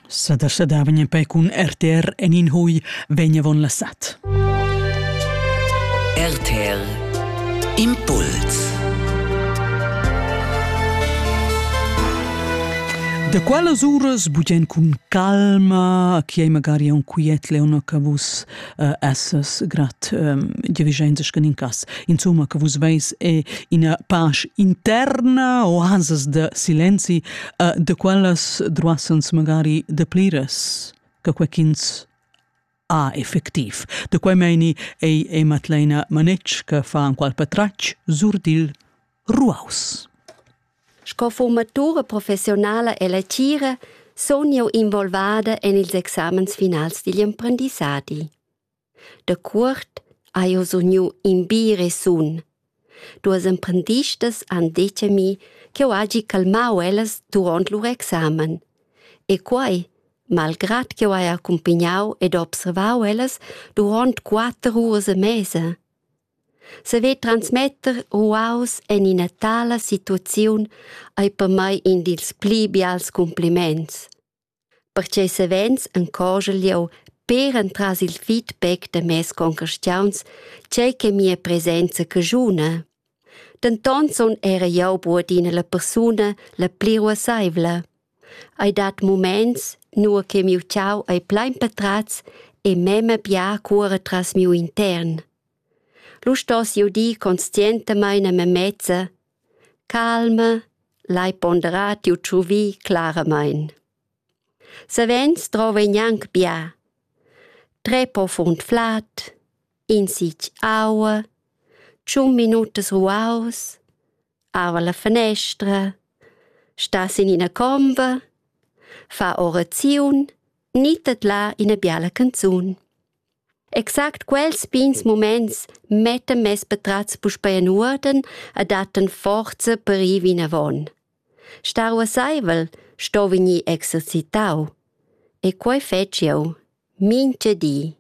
Sedersedavien in pei cun RTR en in hui vegnevon la sat. RTL Impuls Da qualas uras bugen cun calma, chi ei magari un quiet leono che vus essas grat dirigentas che in cas. Insomma, che vus veis è ina pace interna o hasas de silenzi de quellas droassans magari de plires che quequins a effectiv. De quei meini ei ei Madleina Manetsch che fa an qual patratg surdil Ruaus. Sco formatura professionala e lecira sun jeu involvada en ils examens finals digl emprendissadi. Da cuort hai jeu sugniu in bi resun. Duas emprendistas han detg a mi ch'jeu hagi calmau ellas duront lur examen. E quei, malgrad ch'jeu hai accumpagnau ed observau ellas duront quatter uras e mesa. Saver transmetter ruaus en ina tala situaziun ei per mei in dils pli bials cumpliments, pertgei savens encogel jeu per entras il feedback da mes concastiauns tgei che mia presenza caschuna. Denton sun era jeu buc adina la persuna la pli ruasseivla. Ei dat muments, nua che miu tgau ei plein patratgs e mema bia cuora tras miu intern. Lu stoss jeu dir conscientamein a memezza: calma, lai ponderar tiu tschuvì claramein. Savens drova ei gnanc bia. Trer po furn flad, in sich aua, tschun minutas ruaus, ava la fenestra, stas in ina comba, fa oraziun, nitet là ina biala canzun. Exact quels pins moments mettan mes patrats puspei en uorden e datten forza per ir vinavon. Star uasseivel sto vegnir exercitau. E quei fetg jeu, mincha di.